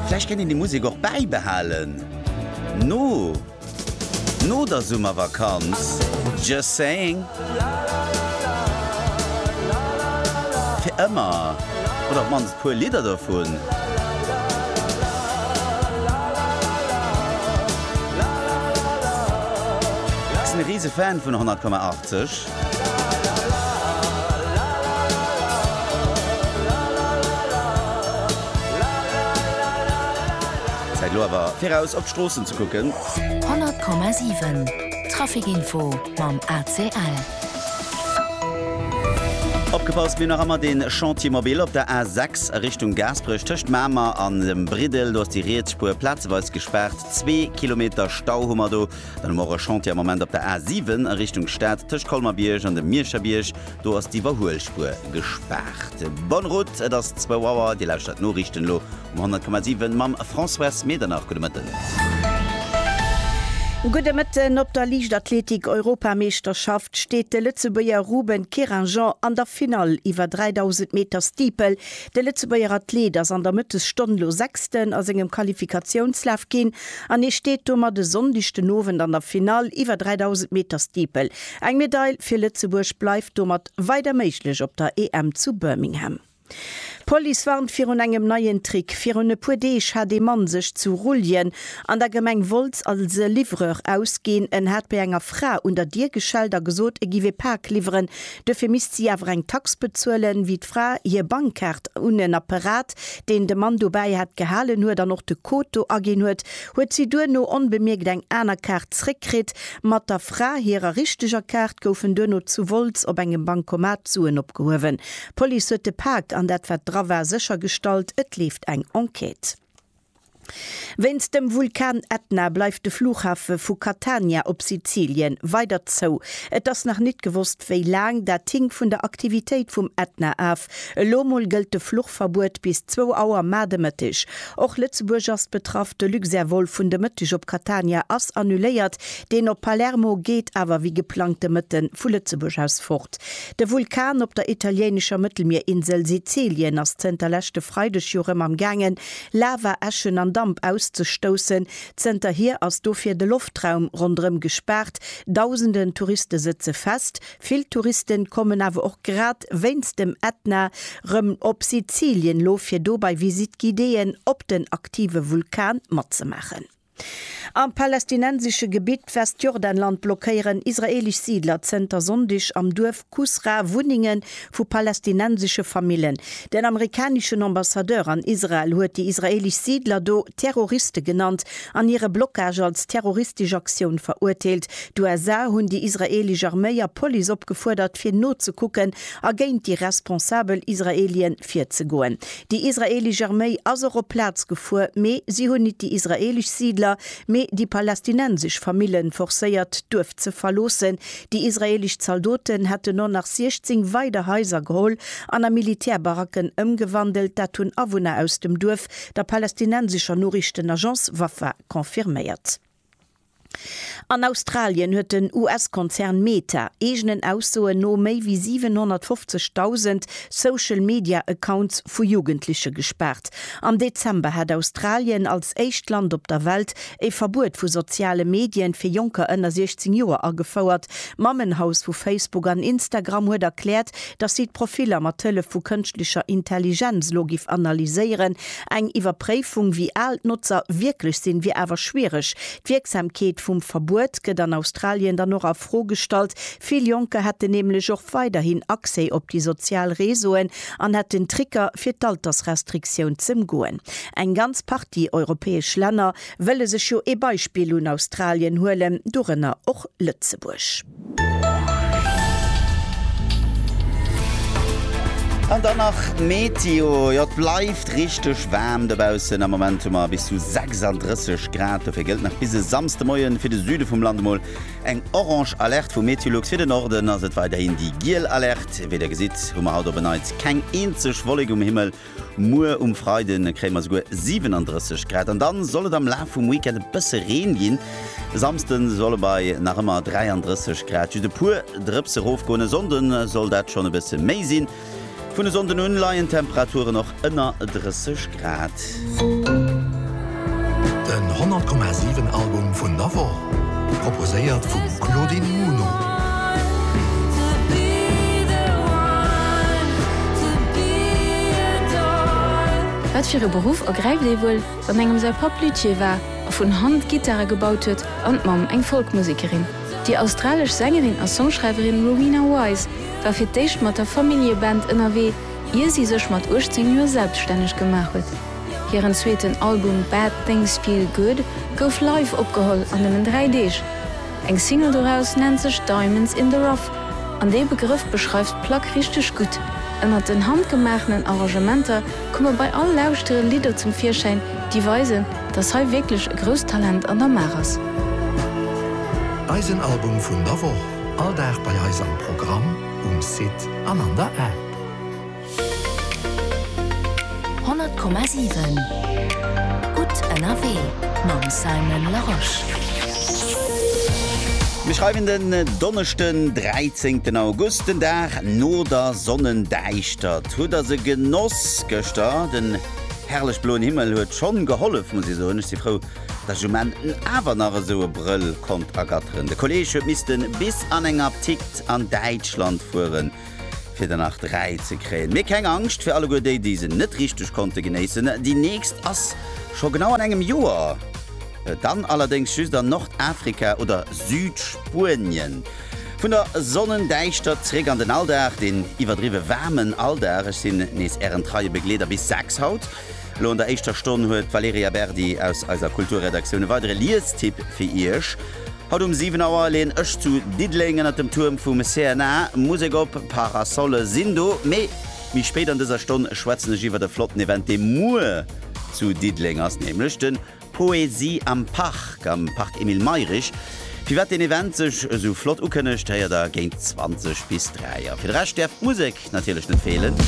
Vläicht kéint een déi Musek och bäibehalen no no der Summervakanz, just saying. Fir ëmmer oder op d'mannst puer Lidder dovun. Ech sinn e Risefan vun 100,80. Zäit elo awer fir eraus op d'Stroossen ze kucken. 100,7 Traficinfo mam ACL. Opgepasst, mir nach emmer den Chantier mobile op der A6 a Richtung Gaasperech tëscht Mamer an dem Briddel. Do ass déi riets Spuer plazeweis gespaart, zwee Kilometer Stau hu mer do. Dann hu mer och e Chantier am Moment op der A 7 a Richtung Stad tëscht Colmer-Bierg an dem Miescherbierg. Do ass d'Iwwerhuelspuer gespaart. Bonne route, et ass zwou Auer. Dir lauschtert d'Noriichten elo um 100,7 mam François Medernach. Gudde Mëtten. Gudde Mëtten. Op der Liichtathletik-Europameeschterschaft steet de Lëtzebuerger Ruben Keringeon an der Finall iwwer 3.000 Meter Steeple. De Lëtzebuerger Athlet ass an der Mëttesstonn elo Sechsten a sengem Qualifikatiounslaf ginn. an hie steet domat e Sonndeg den Owend an der Finall iwwer 3.000 Meter Steeple. Eng Medail fir Lëtzebuerg bleift domat weider méiglech op der EM zu Birmingham. D'Police warnt virun engem neien Trick. Virun e puer Deeg hat ee Mann sech zu Rulljen an der Gemeng Wolz als Livreur ausginn. En hat bei enger Fra un der Dier geschellt a gesot, e giff ee Pak liwweren, Duerfir misst si awer eng Tax bezuelen, wéi d'Fra hir Bankkaart un en Apparat, deen de Mann dobäi hat, gehalen huet an och de Code do aginn huet, huet si duerno onbemierkt eng aner Kaart zréckkritt. Mat der Fra hirer richteger Kaart goufen duerno zu Wolz op engem Bankomat d'Suen opgehuewen. D'Police huet de Pak an dat, wat dra war, séchergestallt. Et leeft eng Enquête. Wéinst dem Vulkan Etna bleift de Flughafe vu Catania op Sizilien weider zou. Et ass nach nit gewosst wéi laang, dat hinkt vun der Aktivitéit vum Etna af. Elo mol gëllt de Fluchverbuet bis zwou Auer mar de Mëtteg. Och Lëtzebuerg ass betraff, de Luxair-Vol vun de Mëtteg op Catania ass annuléiert, deen op Palermo geet awer wéi geplangt de Mëtte vu Lëtzebuerg aus fort. De Vulkan op der italiéinescher Mëttelmierinsel Sizilien ass zënter leschte Freideg jo rëm am gaangen Lava, Äschen an Damp auszestoussen. Zënterhier ass dofir de Loftraum ronderëm gespaart. Dausenden Touriste sëtze fest. Vill Touristen kommen awer och grad wéinst dem Ätna rëm op Sizilien, lo fir do bei Visite-guidéeën op den aktive Vulkan matzemaachen. Am palästinensesche Gebitt Westjordanland blockéieren israeelesch Siidler zënter Sonndeg am Duerf Kusra Wunnenge vu palästinensesche Famillen. Den amerikaneschen Ambassadeur an Israel huet déi israeelesch Siidler do Terroriste genannt an hire Blockage als terroristesch Aktioun verurteelt. D'USA hunn déi israeelesch Arméi a Police opgefuerdert, fir nozekucken a géint déi responsabel Israeelie virzegoen. Déi israeelesch Arméi ass och op d'Plaz gefuer, mee si hunn nit déi israeelesch Siidler, mee déi palästinensesch Famillen forcéiert d'Duerf ze verloossen. Déi israeelesch Zaldoten hätten no nach 16 weider Haiser geholl an a Militärbaracken ëmgewandelt. Dat hunn Awunner aus dem Duerf der palästinensescher Noriichtenagence Wafa confirméiert. An Australien huet den US-Konzern Meta eegenen Aussoen no méi wéi 750.000 Social Media Accounts vu Jugendleche gespaart. Am Dezember hat Australien als éischt Land op der Welt e Verbuet vu soziale Medien fir Jonker ënner 16 Joer agefouert. D'Mammenhaus vu Facebook an Instagram huet erkläert, dass si d'Profiller mat Hëllef vu Kënschtlecher Intelligenz elo géif analyséieren, Eng Iwwerpréifung, wéi al d'Notzer wierklech sinn, wier awer schwiereg. D'Wierksamkeet vum Verbuet gëtt an Australien dann och a Fro gestallt. Vill Jonker hätten nämlech och weiderhin Accès op déi sozial Reseauen an hätten Tricker, fir d'Altersrestriktioun z'ëmgoen. Eng ganz Partie europäesch Länner wëlle sech jo ee Beispill un Australien huelen, dorënner och Lëtzebuerg. An dann nach d'Meteo, jo et bleift richteg waarm dobaussen, am Moment hu mer bis zu 36 Grad, dofir gëllt nach bis e Samsdemoien fir de Süde vum Land emol eng orange Alerte vu Meteolux. Fir de Norden ass et weiderhin déi giel Alerte. Wéi der gesitt hu mer haut op en Neits keng eenzeg Wollek um Himmel. Muer um Freide kréie mer souguer 37 Grad an dann soll et am Laf vum Weekend e bësse Reen ginn. E Samsde soll et bei nach ëmmer 33 Grad just e puer Drëpse rofgoen. E Sonnde soll dat schonn e bësse méi sinn. Vun e Sonnden un leien d'Temperaturen och ënner 30 Grad. Den 100,7 Album vun der Woch, proposéiert vum Claudine Muno. Wat fir e Beruff ergräift ee wuel, wann engem säi Papp Luthier war a vun Hand Gittare gebaut huet an d'Mamm eng Folkmusekerin? Déi australesch Sängerin a Songschreiwerin Rowena Wise war fir d'éischt mat der Familljeband ënnerwee, ier si sech mat 18 Joer selbstänneg gemaach huet. Hiren zweeten Album Bad Things Feel Good gouf live opgeholl an nëmmen dräi Deeg. Eng Single doraus nennt sech Diamonds in the Rough an dee Begrëff beschreift d'Plack richteg gutt. Ënnert den handgemaachenen Arrangementer komme bei all Lauschtere Lidder zum Virschäin, déi weisen, dass hei wierklech e grousst Talent an der Maach ass. Eisen Album vun der Woch, all Dag bei eis am Programm, um Site an an der App. Honnert Komma siwen Gutt ënnerwee mam Simon Larosche. Mir schreiwen den Donneschden 13 August, den Dag no der Sonnendäischtert. Hutt der se genoss gëschter? Den herrlech bloen Himmel huet schonn gehollef muss ech soen. Ech si frou datt ech um Enn awer nach esou e Brëll konnt ergatteren. De Kolleg huet missten bis an eng Aptikt an Däitschland fueren. fir der nach 3 ze kréien. Mee keng Angscht fir alleguer déi, déi se net richteg konnte genéissen, déi nächst ass scho genau an engem Joer, dann allerdéngs just an Nordafrika oder Südspuenien. Vun der Sonnendäischtert zréck an den Alldag, deen iwwerdriwwe waarmen Alldag. Ech sinn nees ären treie Begleeder bis 6 haut. Elo an der éischter Stonn huet d'Valerija Berdi aus eiser Kulturredaktioun e weidere Liestipp fir iech. Haut um 7 Auer leen ech zu Diddeleng ënnert dem Tuerm vum CNA Musek op. Parasolle sinn do. Mee méi spéit an dëser Stonn schwätzen ech iwwert e flotten Event dee muer zu Diddeleng ass, nämlech de Poesie am Park am Park Emile Mayrisch. Firwat deen Event sech esou flott ukënnegt, héiert der géint 20 bis 3 a fir de Rescht däerf d'Musek natierlech net feelen.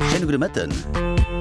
Schéine gudde Mëtten.